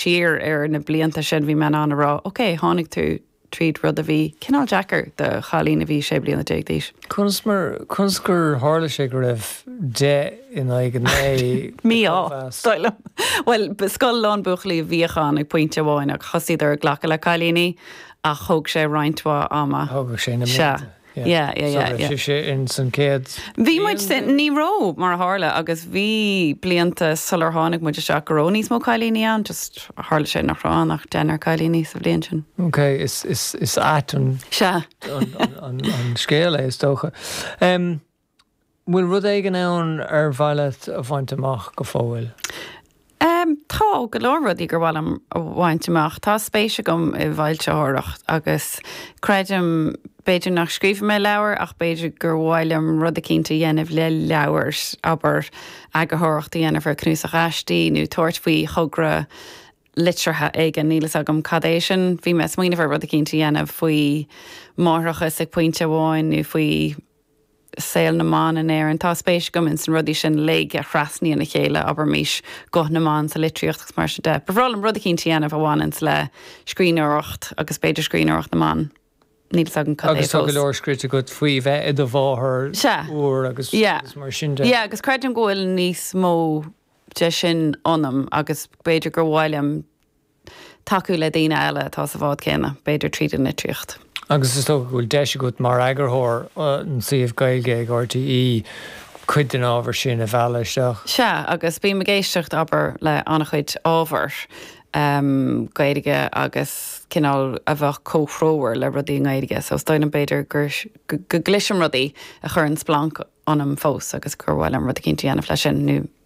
siar ar na blianta sin, bhí mé in ann a rá, OK, tháinig tú tríd rud a bhí cineál deacair do chailín a bhí sé bliana déag d'aois. Conas mar, conas gur tharla sé go raibh deich in aghaidh a naoi de chóimheas? Mí-ádh, dar liom. Bhuel, ba scoil lán buachaillí a bhíodh ann ag pointe amháin ach thosaíodar ag glacadh le cailíní ach thóg sé roinnt mhaith ama. Thógadh sé na blianta. Sea. Yeah, yeah, yeah, yeah. Bhí sé in san céad. Bhí muid sin, ní raibh mar a tharla agus bhí blianta sular tháinig muid isteach go raibh níos mó cailíní ann, just tharla sé nach raibh ann ach deichniúr cailíní sa bhliain sin. Ok, is ait an scéal é is dócha. bhfuil rud éigin ann ar mhaith leat a bhaint amach go fóill? Tá go leor rudaí gur mhaith liom a bhaint amach. Tá spéis agam i bhfoilsitheoireacht agus creidim, b'fhéidir nach scríobfaidh mé leabhar ach b'fhéidir gur mhaith liom rud eicínt a dhéanamh le leabhair, abair, eagarthóireacht a dhéanamh ar cnuasach aistí nó tabhairt faoi thogra liteartha éigin, níl a fhios agam cad é sin. Bhí mé ag smaoineamh ar rud eicínt a dhéanamh faoi máithreachas ag pointe amháin nó faoi saol na mban in Éirinn. Tá spéis agam ins na rudaí sin uilig a thrasnaíonn a chéile, abraimis, guth na mban sa litríocht agus mar sin de. Ba bhreá liom rud eicínt a dhéanamh a bhaineanns le scríbhneoireacht agus b'fhéidir scríbhneoireacht na mban. Níl 's agam cad é fós. Agus tá go leor scríte agat faoi bheith i do mháthair úr agus Sea. Yeah. agus mar sin de. Yeah, agus creidim go bhfuil níos mó de sin ionam agus b'fhéidir gur mhaith liom. tacú le daoine eile atá sa bhád céanna, b'fhéidir tríd an litríocht. Agus is dócha go bhfuil deis agat mar eagarthóir an tsuímh Gaeilge ag RTÉ cuid den ábhar sin a mhealladh isteach? Sea, agus bím ag éisteacht, abair, le an-chuid ábhar Gaeilge agus cineál a bheadh comhthreomhar le rudaí i nGaeilge, so is dóigh liom b'fhéidir go gcloisim rudaí a chuireann splanc ionam fós agus gur mhaith liom rud eicínt a dhéanamh leis sin nó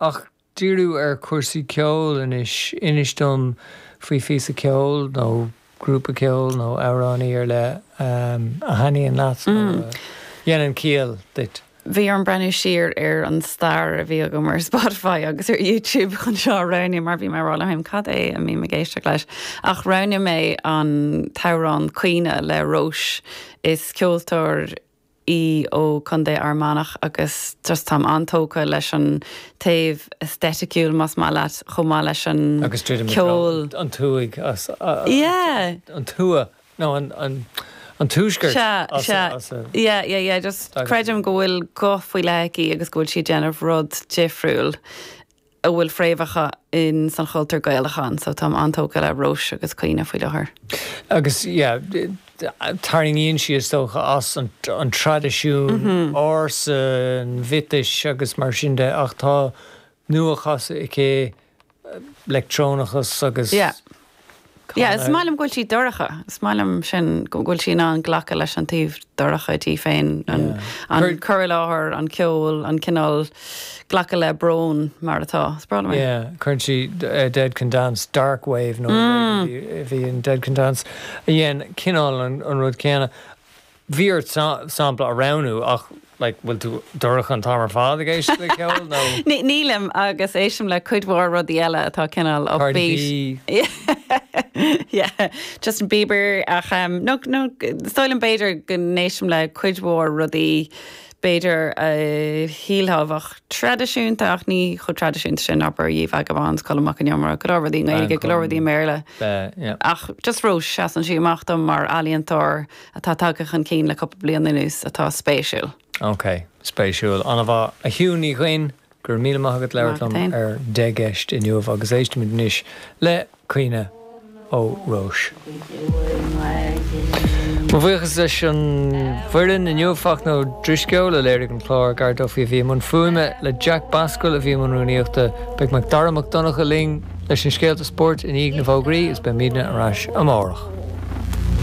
Ach díriú ar chúrsaí ceoil anois. Inis dom faoi phíosa ceoil nó grúpa ceoil nó amhránaí ar leith a thaitníonn leat nó a dhéanann ciall duit. Bhí orm breathnú siar ar an stair a bhí agam ar Spotify agus ar YouTube chun seo a roghnú mar bhí mé ag rá liom féin 'cad é a mbím ag éisteacht leis? ach roghnaigh mé an t-amhrán 'Caoine' le Róis. Is ceoltóir. í ó Contae Fhear Manach agus just táim an-tógtha leis an taobh aestheticiúil, más maith leat, chomh maith leis an ceol. Agus druidim i dtreo an tuaigh as a, yeah! an tuath, no, an tuaiscirt as a, sea, sea, yeah, yeah, yeah, just creidim go bhfuil guth faoi leith aici agus go bhfuil sí ag déanamh rud difriúil. a bhfuil fréamhacha insan chultúr Gaelach ann, so táim an-tógtha le Róis agus Caoine faoi láthair. Agus yeah, tarraingíonn sí is dócha as an traidisiún ársa, an mhiotais agus mar sin de ach tá nua-chasadh aici, leictreonachas agus. Yeah. Yeah, is maith liom go bhfuil sí dorcha. Is maith liom sin, go bhfuil sí in ann glacadh leis an taobh dorcha di féin, a chur i láthair, an ceol, an cineál glacadh le brón mar atá. Is breá liom é. Yeah, cuireann sí Dead Can Dance, Dark Wave nó a bhí ann Dead Can Dance a dhein cineál an rud céanna. Bhí ort sampla a roghnú ach like bhfuil tú dorcha an t-am ar fad ag éisteacht le ceol nó? Nílim agus éistim le cuid mhór rudaí eile atá cineál upbeat. Yeah, Justin Bieber ach em no no sílim b'fhéidir go n-éistim le cuid mhór rudaí b'fhéidir a shílfeá bheadh traidisiúnta ach ní chomh traidisiúnta sin abair Ye Vagabonds, Colm Mac an Iomaire, go leor rudaí i nGaeilge, go leor rudaí i mBéarla ach just Róis seasann sí amach dom mar ealaíontóir. atá tagtha chun cinn le cúpla bliain anuas atá spéisiúil. Ok, spéisiúil. An-mhaith. A Shiún Ní Dhuinn, go raibh míle maith agat as labhairt liom ar Deich gCeist inniu agus éistimid anois le Caoine ó Róis. Mo bhuíochas leis an bhfoireann inniu, Fachtna Ó Drisceoil a léirigh an clár, Gar Duffy a bhí i mbun fuaime, agus Jack Basquill a bhí i mbun rúnaíochta. Beidh Macdara Mac Donncha linn leis na scéalta spóirt i ndiaidh na bhfógraí agus beimidne ar ais amárach.